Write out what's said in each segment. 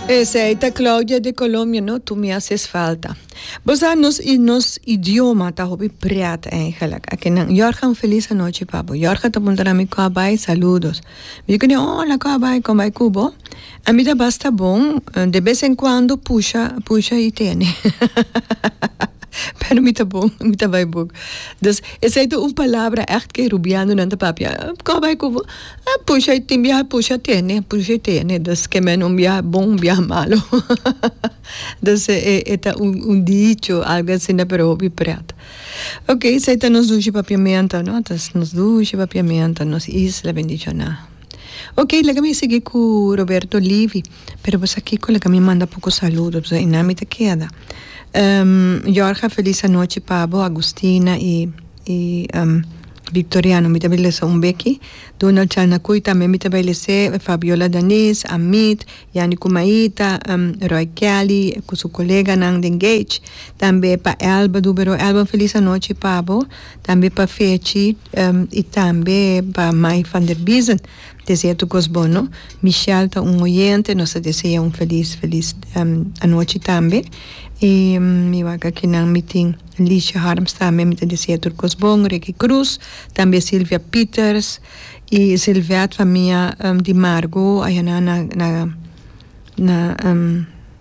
Esei ta Claudia de Colombia no tu mi haces falta. Bo sa nos i nos idioma ta hopi pret eigenlijk. Ake nan Jorge un feliz anoche pa bo. Jorge ta punta na mi koa bai saludos. Mi kune hola koa bai kon bai kubo. A mi ta basta bon de bes en kuando pusha pusha i tene pero mi ta bon mi ta bai buk. Dus esei ta un palabra echt ke rubiano nan ta papia koa bai kubo. E pusha e tin biaha e pusha tene pusha e tene dus ke mene un biaha bon un biaha malo dus e e ta un un dicho algo asina pero hopi pret ok esei ta nos dushi papiamento no dus nos dushi papiamento nos isla bendicional ok laga mi a sigui ku Roberto Livi. pero bo sa kico laga mi manda poco saludo so y nan mi ta keda Jorge feliz anochi pa bo Agustina y y Victoriano mi ta bay lesa un beki Donald Chalnacuy tambe mi ta bay lese Fabiola Danis Amit Yani Kumaita Roy Kelly cu su koleganan den Gage tambe pa Elba Dubero Elba un feliz anochi pa bo tambe pa Fechi y tambe pa Mai Vanderbiesen. Desea tur cos bono. Michelle ta un oyente, nos ta desea un feliz feliz anochi tambe y mi wak akinan mi tin Licia Harms tambe mi ta desea tur cos bon, Ricky Cruz tambe Silvia Peters y Silvette famia di Margo ayanan na na na.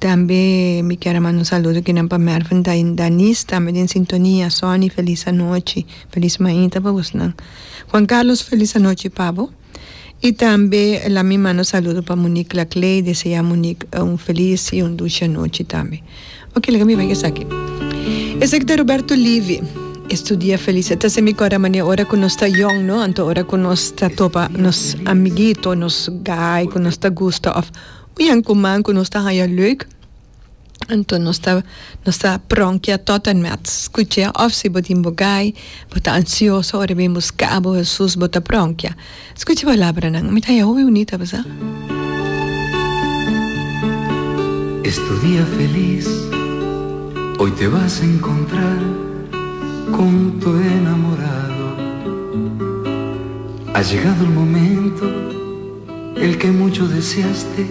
Tambe mi kier a manda un saludo kinan pa Mervin Daniz tambe den sintonia Sonny felis anochi felis mainta pa bosnan Juan Carlos felis anochi pa bo y tambe la mi manda un saludo pa Monique Laclay desea Monique un felis y un dushi anochi tambe oke laga mi bai esaki esaki ta Roberto Livi estudia felis e ta hasi mi corda manera ora cu nos ta yong no anto ora cu nos ta topa nos amiguito nos guy cu nos ta gusta of Bien cuman cu nos ta haya leuk, anto nos ta nos ta pronkia tot en met. Scucha of si bo tin bo gai, bo ta ansioso ora e bin busca bo Hesus, bo ta pronkia. Scucha e palabranan, mi ta haya hopi bunita, bisa? Es tu dia felis, hoy te vas encontrar con tu enamorado, ha llegado el momento, el que mucho deseaste.